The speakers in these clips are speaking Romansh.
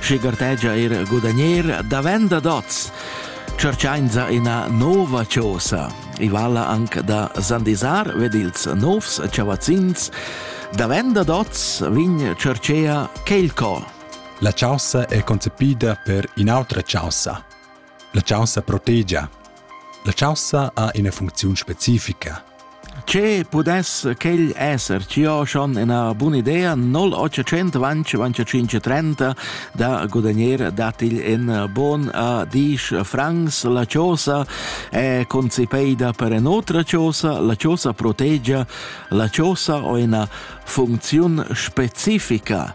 schi gartegia eir gudagnir davent da dots. Cerchainza ina nova chosa. I vala anc da sandisar ved ils novs chavazzins. Davent da dots vin cerchea Kelco. La chaussa è concepida per in'autra chaussa. La chaussa protegia. La chaussa ha ina funcziun specifica. Che pudess quel esser? Ci ho schon una buona idea 0800 25 30 da guadagnar datigl in bon a 10 francs la chaussa è concepeida per un'otra chaussa la chaussa protegia la chaussa ha una funzione specifica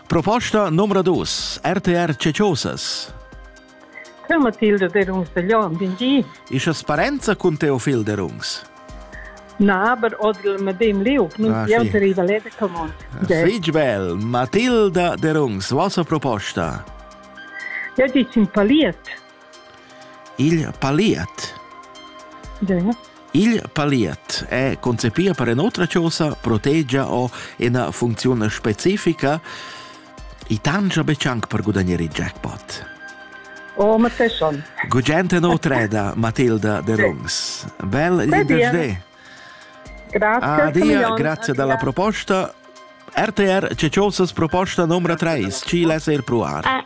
Proposta numero 2 RTR Ceciosas Che Matilde Derungs de Jon, bin di? Isas parenza cun Teofil Derungs? Na, aber oder mit dem Liub, nun ah, sì. die Valete Common. Fig bel, Matilda Derungs, vostra proposta? Ja, dici in paliet. Il paliet Il paliet è concepì per in'otra chosa, protegia o ina funcziun specifica. I tangia betg anc per gudagnare il jackpot. O, ma sei schon. Gugente no treda, Matilda de Rungs. Bel l'intervento. Grazie. Adia, grazie della proposta. RTR Ceciosas proposta numero 3, ci lesse il provar. Eh,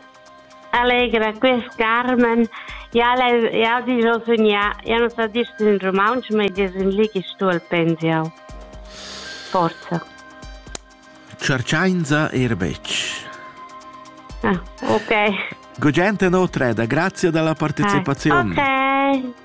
Allegra quest Carmen, jau hai ditg al sugnà, jau na sa ditg sin rumauntsch, ma i es ün li chi stu al pens jau. Forza. Cerchainza eir betg. Ah, ok. Gugent e notre, da grazia dalla partecipaziun. Ok.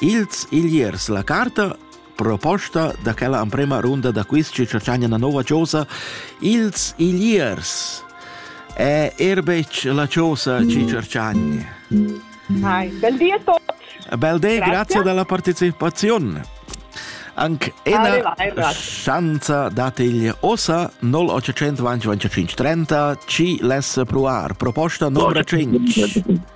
Ils Igliers la carta proposta da quella emprema runda da quiz che tschagna una nova chosa ils Igliers è er betg la chosa ci cercagni. Hi, bel di a tutti. Bel di, grazie, grazie della partecipazione. Anche una chance dategli osa 0800 25 30 ci less provar proposta numero 5.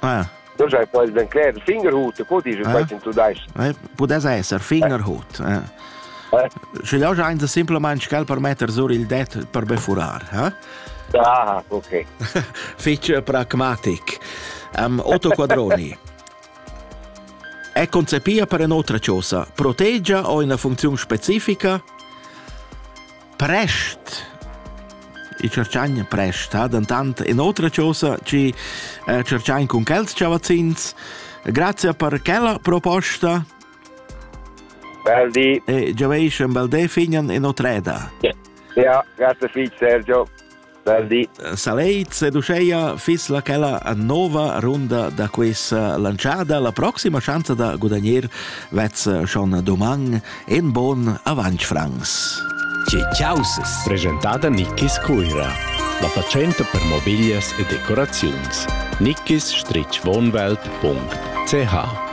Ah. Forse poi ben cler fingerhut, co dici eh? quasi in tudais. Eh, pudess esser fingerhut. Eh. Eh? Sche jau giain semplamain sch'el per metter sur il det per befurar, eh? Ah, ok. Fitch pragmatic. Um, Otto Quadroni. È concepia per un'altra cosa, proteggia o una funzione specifica? Prest il tscherchagna prest ha dentant in'otra chosa che eh, tscherchain cun quels chavazzins. Grazie per quella proposta. Bel di. E gioveish un bel dei fignan in otreda. Ja, grazie viel Sergio. Verdi. Saleit seduceia fis la chella nova runda da questa lanciada. La proxima schanza da gudagner vez schon doman en bon avanc Franz. Causes. Presentada Nickis Cuira. La fatschenta per mobiglias e decoraziuns. nickiswohnwelt.ch